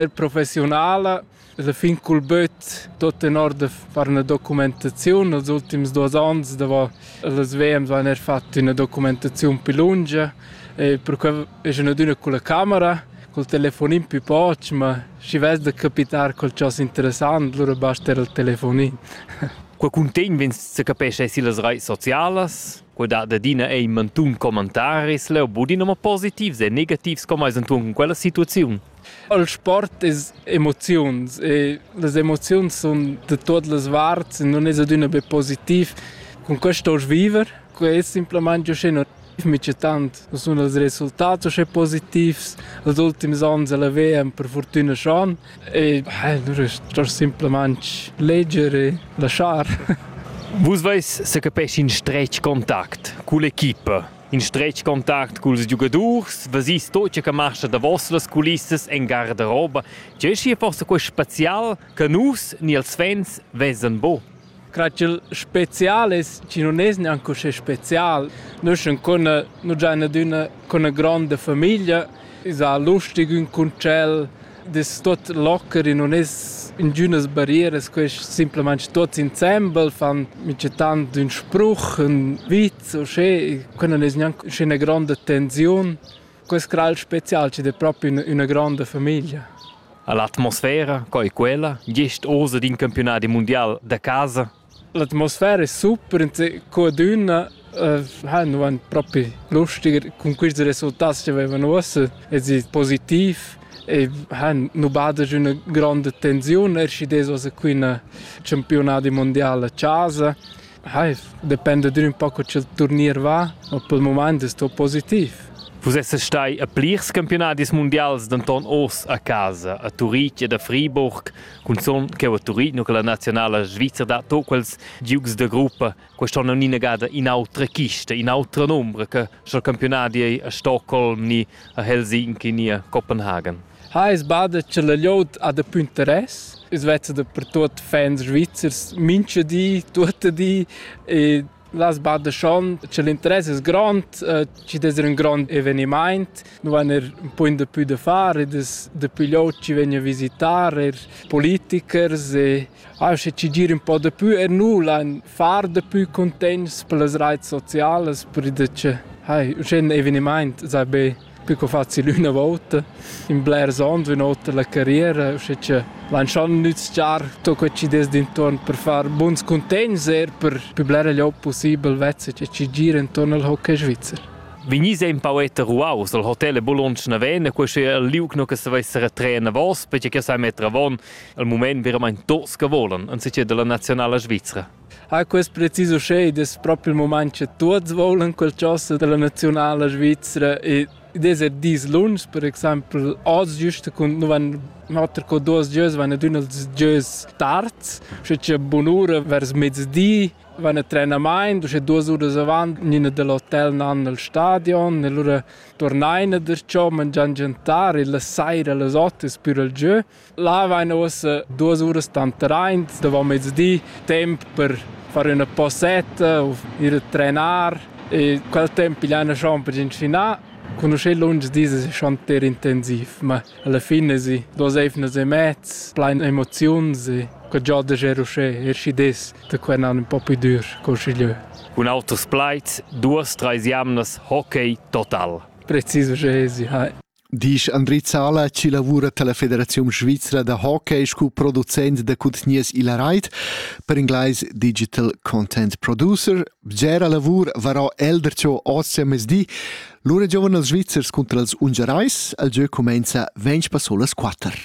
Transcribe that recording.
El professiunala la fin cul böt tot tenor da far üna documentaziun. Als ultims duos ans davo las WMs vain er fat üna documentaziun pi lungia e perque es ün adüna culla camera, col telefonin pi poch, ma schi vess da capitar qualchosa interessant, lura basta eir il telefonin. Qua cuntegn vegns sa capescha eir sillas raits socialas, quel dat adina ei mantun commentaris, leu budin ma positivs e negativs, com ais intuon cun quella situaziun? Il sport es emoziuns e las emoziuns sun da tuot las varts e nun es adüna be positiv. Cun quest ho'ls viver, quai es simplamaing uschè negativ mica tant. Nu sun ils resultats uschè positivs als ultims ans e la VM per furtüna schon. E nu rest simplamaing leger e laschar. Vus vais se capescha in stretg contact cull'equipa. In stretg contact culs giugadurs, vesì sto che marcha davos las culissas en garderoba. Tge è forse quest spezial che nus ni els fans vesan bo? Craigl spezial es chi nun es gnanc uschè spezial. Nus ün cun nu giain adüna cun üna gronda famiglia, esa lustig ün cun tschel, das tot locker e non es ingünas barrieras, quest simplamaing tots insembel fan micetant ün spruch, ün vit o sche, que non es gnanc üschè gronda tensiun. Quest gral special chi'd es propi üna gronda famiglia. L'atmosfera, co e quella, gest oz d'in campiunadi mundial da casa, L'atmosfera è super, co dunna ha nuan propi lustiger cun quists resultats che vevan uossa ed es positiv e han nu bada giü üna gronda tensiun, er schi dess uossa qui üna campiunadi mundiala a chasa. Hai, dependa dür ün po co cha'l turnier va, ma pel mumaint es tuot positiv. Vus essas stai a plirs campiunadis mundials denton oz a casa, a Turitg ed a Friburg. Cunzont cheu a Turino che la nazionala svizra dat to quels giugs da gruppa, quest'anno ni negada in autra chista, in autra nombra che sch'el campionati ei a Stockholm ni a Helsinki ni a Copenhagen. Ha es bada che la liot ha da più interess. Es vezza da per tuot fans svizzers mincha di, tuotta di e Las badeschond che l'interess es grond, chi'd es ün grond evenimaint. Nu vain eir ün pugn dapü da far ed es dapü lod chi vegn a visitar, eir politikers e auncha chi gira ün po dapü. Er nu lain far dapü cuntegns per las raits socialas, per id che hai, uschè ün evenimaint s'ha be Più co facil üna vouta, in blers ons, üna otra la carriera, usche cha lantschan nüzchar tuot quets ideas d'intuorn per far buns cuntegns eir per pü blera gliob pussibel vezza cha chi gira intuorn al hockey svizzer. Vegnis è in poeta ruaus al hotel Bologna Naven, questo è il liug no che se vesse retrair navos, perché che sai mettere avon al moment veramente dos che volen, anziché della nazionale svizzera. Ha quest precis uschè id es propi il mumaint cha tuots voulan qualchosa da la naziunala svizra ed id es er dis lungs, per exaimpel oz güsta cun nu van oter co duos gieus van ad ün als gieus tards, uschè cha bunura vers mezdi van a trenamaint, uschè duos uras avant gnina da l'hotel nan al stadion e lura turnaina darcho, mangian giantar e la saira a las ot es pür al giö. Là vain uossa duos uras tanteraint davant mezdi, temp per far üna posetta u ir a trenar e quel temp pigliaina schon per inschinà. Cugnuscher lungs dis es schon ter intensiv, ma alla fin esi duos eivnas e mez plain emoziuns e que giò da ger uschè, er schi dess da quel an ün po pü dür col schigliö. Cun auters plaids, duos, trais jamnas, hockey total. Precis uschè esi, hai. Disch Andri Zala chi lavura tilla Federaziun svizra da hockey scu producent da cuntegnius illa rait, per inglais Digital Content Producer. Bgera lavur varò el darcho oz a mezdi. Lura giovan els Svizzers cunter els Ungarais. El giö cumainza ventg passolas quatter.